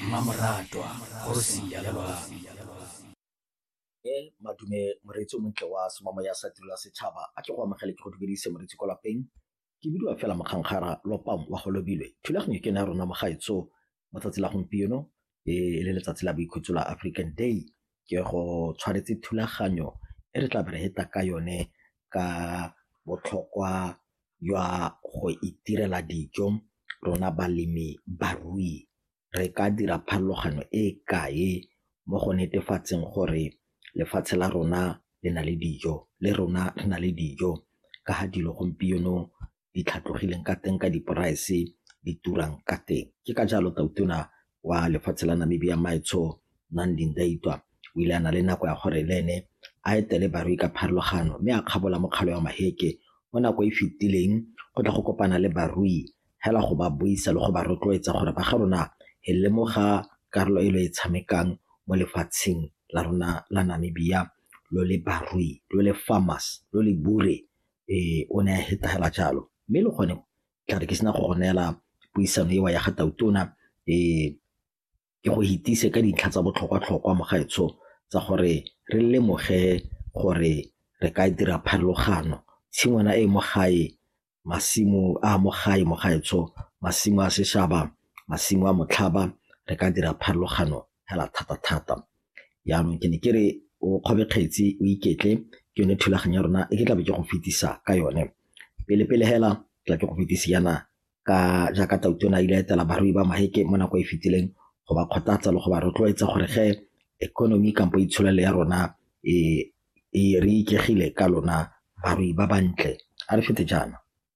mmamoratwa kgosi ya lelwang madume moreetsi o montle wa semamo ya sa tirela setšhaba a tle go amogele ke go dumedise moreetsi ko lapeng ke bidiwa fela mokgankgara lopang wa go lobilwe thulaganyo ke ne ya rona mogaetso mo tsatsi la gompieno e le letsatsi la boikhutso la african day ke go tshwanetse thulaganyo e re tla be re heta ka yone ka botlhokwa jwa go itirela dijo rona balemi barui re ka dira pharologano e kae mo go netefatseng gore lefatshe la rona le na le dijo le rona re na le dijo ka ga dilo gompieno di tlhatlogileng ka teng ka di-price di turang ka teng. Ke ka jalo Tau Tona wa lefatshe la Namibia Maetsho Nandi Ndaitwah o ile a na le nako ya gore le ene a etele barui ka pharologano mme a kgabola mokgalo wa Maheke mo nako e fetileng go tla go kopana le barui hela go ba buisa le go ba rotloetsa gore ba ga rona e lemoga karolo e lo e tshamekang mo lefatsheng la rona la Namibia lo le barui lo le farmers lo le bure ee o ne a hetagela jalo mme le gone ke re ke sena go go neela puisano eo ya ga tautona ke go itsise ka dintlha tsa botlhokwa-tlhokwa mo gaetsho tsa gore re lemoge gore re ka dira pharologano. Tshingwana e mo gae, masimo a mo gae mo gaetsho, masimo a seshaba, masimo a motlhaba re ka dira pharologano fela thata thata. Jaanong ke ne ke re o kgobe kgetsi o iketle ke yone thulaganyo ya rona e ke tlabe ke go fetisa ka yone. Pele pele fela ke tla ke go fetisa yana ka jaaka Tautona a ile a etela barui ba Maheke mo nako e fetileng go ba kgothatsa le go ba rotloetsa gore ge economy kampo itsholelo ya rona e re ikegile ka lona barui ba bantle a re fete jaana.